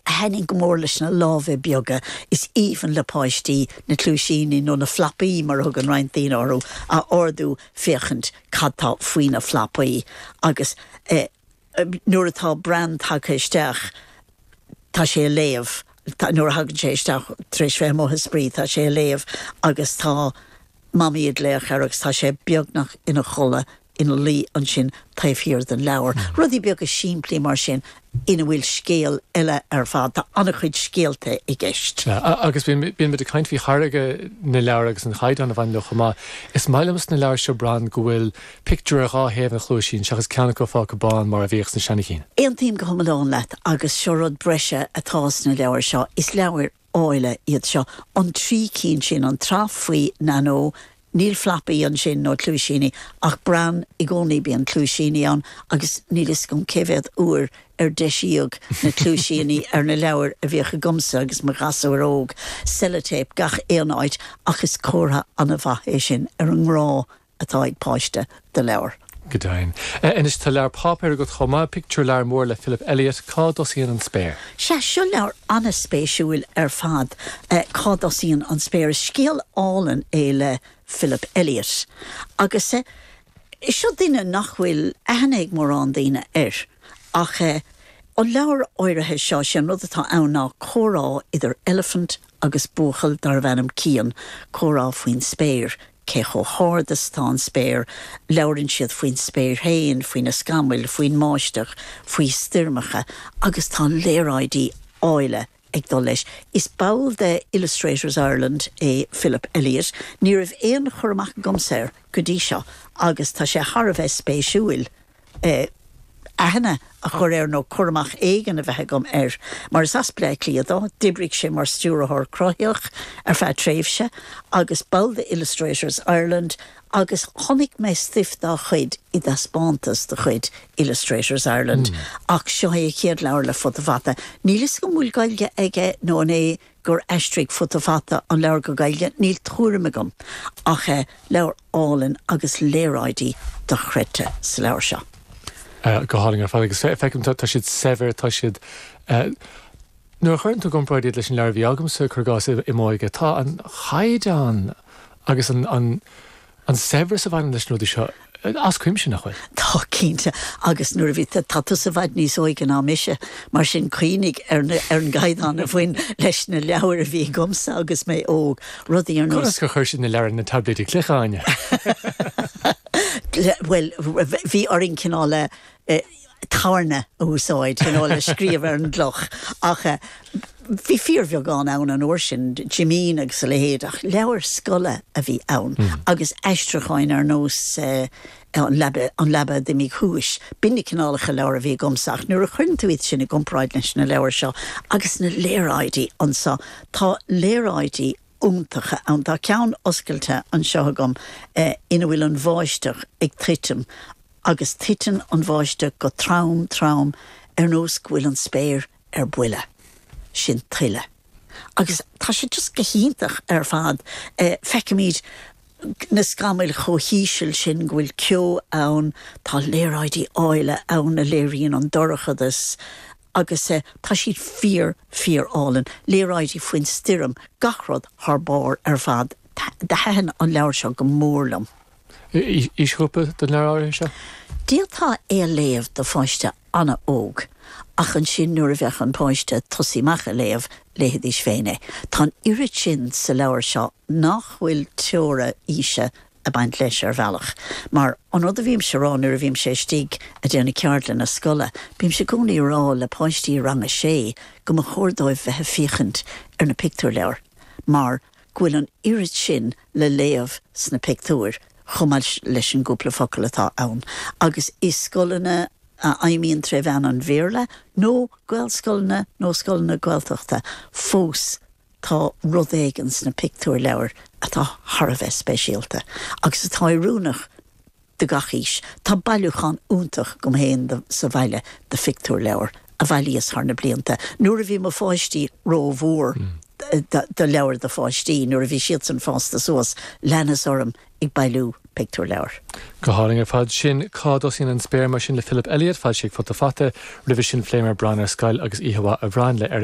a thaitnigh go mór leis na lámha beaga is aoibhinn le páistí, na cluaisíní, nó na flapaí mar a thugann roinnt daoine orthu, a ardú, féachaint cad tá faoi na flapaí agus nuair atá Bran tagtha isteach tá sé ag léamh, nuair a thagann sé isteach tar éis bheith amuigh ag spraoi tá sé ag léamh agus tá Mamaí ag glaoch air agus tá sé beagnach ina chodladh ina luí ansin taobh thiar den leabhar. Rudaí beaga simplí mar sin ina bhfuil scéal eile ar fad. Tá an-chuid scéalta i gceist. Agus bíonn muid ag caint faoi tháirgeadh na leabhar agus an caighdeán a bhaineann leo chomh maith. Is maith liom sna leabhair seo, Bran, go bhfuil pictiúr ar dhá thaobh an chluaisín seachas ceann acu fágtha bán mar a bhíodh sna seana chinn. Aontaím go hiomlán leat agus seo rud breise atá sna leabhair seo, is leabhair áille iad seo, an trí cinn sin, an tsraith faoi Nanó, níl flapaí ansin nó cluaisíní ach Bran i gcónaí bíonn cluaisíní ann agus níl fhios agam cé mhéad uair ar deisíodh na cluaisíní ar na leabhair a bhíodh agamsa agus mo ghasúir óg. Sellotape gach aon áit ach is comhartha an-mhaith é sin ar an ngrá atá ag páiste do leabhar. Go deimhin. Anois, tá leabhar páipéir agat chomh maith, pictiúrleabhar mór le Philip Elliot, Cá dtosaíonn an Spéir? Sea, seo leabhar an-spéisiúil ar fad, Cá dtosaíonn an Spéir? Is scéal álainn é le Philip Elliot. Agus seo duine nach bhfuil aithne ag mórán daoine air. Ach an leabhar áirithe seo, sé an rud atá ann ná comhrá idir Eilifint agus buachaill darbh ainm Cian, comhrá faoin spéir, cé chomh hard is atá an spéir, labhrann siad faoin spéir féin, faoi na scamaill, faoin mbáisteach, faoi stoirmeacha agus tá léaráidí áille ag dul leis. Is ball de Illustrators Ireland é Philip Elliot. Ní raibh aon chur amach agamsa air go dtí seo agus tá sé thar a bheith spéisiúil. aithne a chur air nó cur amach éigin a bheith agam air. Mar is as Bleá Cliath dó, d'oibrigh sé mar Stiúrthóir Cruthaitheach ar feadh tréimhse agus ball de Illustrators Ireland agus chonaic mé stuif dá chuid i dtaispeántas de chuid Illustrators Ireland ach seo é a chéad leabhar le Futa Fata. Níl 'fhios agam an bhfuil Gaeilge aige nó an é gur aistrigh Futa Fata an leabhar go Gaeilge, níl tuairim agam ach eh leabhar álainn agus léaráidí dochreidte sa leabhar seo. Eh go hálainn ar fad agus eh feicim tá siad saibhir, tá siad eh nuair a chuireann tú i gcomparáid iad leis na leabhair a bhí agamsa cur i gcás i m'óige tá an caighdeán agus an An saibhreas a bhaineann leis na rudaí seo as cuimse, nach bhfuil? Tá, cinnte. Agus nuair a bhí, tá tusa i bhfad níos óige ná mise, mar sin cuimhnigh ar na, ar an gcaighdeán a bhain leis na leabhair a bhí agamsa agus mé óg, rudaí ar nós. Conas gur chuir siad na leabhair ar na taibléidí cloiche, Áine? Bhuel, bhí orainn cineál a. tairne a úsáid you know le scríobh ar an gcloch ach bhí fíorbheagán ann an uair sin, Jimín agus a leithéid, ach leabhair scoile a bhí ann agus aistriúcháin ar nós an leaba an leaba a d'imigh thuas, b'in na cineálacha leabhar a bhí agamsa ach nuair a chuireann tú iad sin i gcomparáid leis na leabhair seo agus na léaráidí anseo, tá léaráidí. iontacha ann. Tá ceann oscailte anseo agam ina bhfuil an bháisteach ag titim agus titeann an bháisteach go trom trom ar nós go bhfuil an spéir ar buile. Sin tuile. Agus tá sé just go hiontach ar fad. Feicimid na scamaill chomh híseal sin go bhfuil ceo ann. Tá léaráidí áille ann a léiríonn an dorchadas agus tá siad fíor, fíor álainn, léaráidí faoin stoirm, gach rud thar barr ar fad. Thaitin an leabhar seo go mór liom. Aoisghrúpa don leabhar áirithe seo? D'fhéadfá é a léamh do pháiste an-óg, ach ansin nuair a bheadh an páiste ag tosaí amach ag léamh, léifidís féin é. Tá an oiread sin sa leabhar seo nach bhfuil teora aoise ag baint leis, ar bhealach. Mar, an rud a bhímse a rá nuair a bhímse istigh ag déanamh ceardlanna scoile, bímse i gcónaí ag rá le páistí i rang a sé go mba chóir dóibh bheith ag féachaint ar na pictiúrleabhair mar go bhfuil an oiread sin le léamh sna pictiúir chomh maith leis an gcúpla focal atá ann. Agus i scoileanna a fheidhmíonn tré mheán an Bhéarla, nó Gaelscoileanna nó scoileanna Gaeltachta, fós Tá rud éigin sna pictiúrleabhair atá thar a bheith speisialta agus atá oiriúnach do gach aois. Tá bailiúchán iontach agam féin sa bhaile de phictiúrleabhair a bhailíos thar na blianta, nuair a bhí mo pháistí rómhór do leabhair do pháistí, nuair a bhí siadsan fásta suas, leanas orm ag bailiú pictiúrleabhar. Go hálainn ar fad sin. Cá dtosaíonn an spéir? Mar sin le Philip Elliot, foilsithe ag Futa Fata roimhe sin, phléamar Bran ar Scoil agus Oíche Mhaith a Bhrain le Eric.